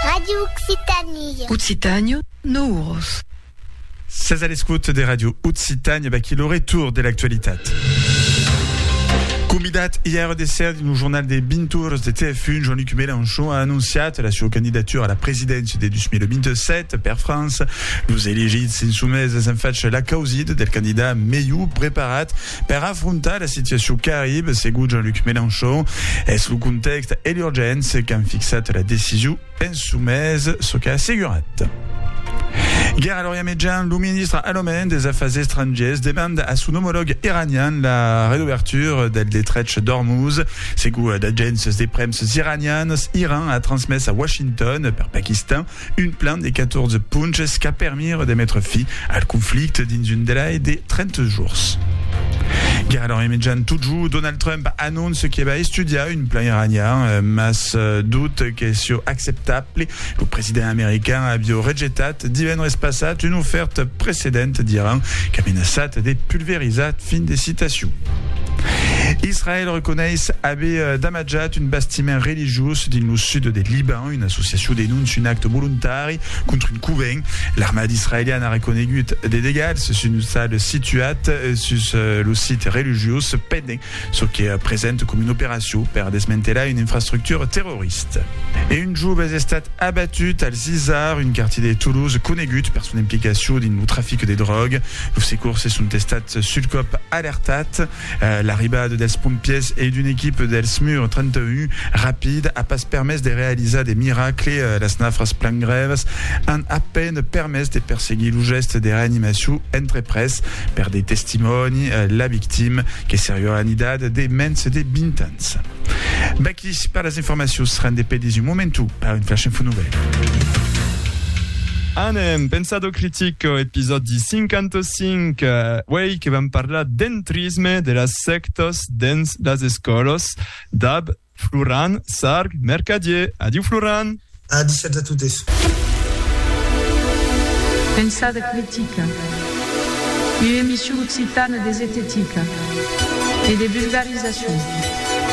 Radio Occitanie. Occitània, nou oros. Sètz a l'escòt de Radio Occitània, vaquí lo retorn de l'actualitat. Convidat ièr de ser dins lo jornal de 20 oras de TF1, Jean-Luc Mélenchon a anonciat la sua candidatura a la presidéncia de 2027 per França. Los elegits insumés es en fach l'acausida del candidat melhor preparat Per afrontar la situacion qu'arribe, segon Jean-Luc Mélenchon, es lo contèxt e l'urgéncia qu'an fixat la decision en çò mes, çò qu'a assegurat. Guerra l'Orient Mejan, lo ministre alemand des Afars Estrangiers demanda a son omològ iranian la redobertura del detrech d'Ormuz. Segon d'agéncias de premsas iranianas, Iran a transmés a Washington, per Paquistan, Un plan de 14 ponches qu'a permire de metre fi al conflicte dins un delai de 30 jours. Gara l'an emejan totjor, Donald Trump anonce que va estudiar un plan iranian, mas dut que sieu acceptable. Lo president american avieu rejetat divendres passat una ofèrta precedenta d'Iran qu'a menaçat de pulverizar. Fin de citacion. Israèl reconeis aver damatjat un bastiment religiós dins lo sud de Liban. Una associacion denóncia un acte volontari contra un covent. L'armada israeliana a reconegut de degalhs sus un ostal situat sus lo site religiós pendent çò que presenta coma una operacion per desmantelar una infrastructura terrorista. E un jove es estat abatut al Zizar, un quartier de Toulouse conegut per son implicacion dins lo trafic de dròga. Los secors se son estats sul còp alertats. L'arribada dels pompièrs e d'una equipa del Smur 31 rapid a pas permés de realizar de miracle, las nafras plan grèvas an a peine permés de perseguir lo gèste de reanimacion entreprés per de testimòni, la victima que seriá anidat de mens de 20 ans. Vaqui per las informacions, rendez pedis un momentu per un flash info novèl. Anem, Pensado critico, episòdi 56. 5. Uèi que vam parlar d'entrisme de las sèctas dens las escòlas, dab Floran Sarg Mercadier. Adiu Floran! A dishèt a totes. Pensada critica, ua emission occitana de zetetica e de vulgarizacion.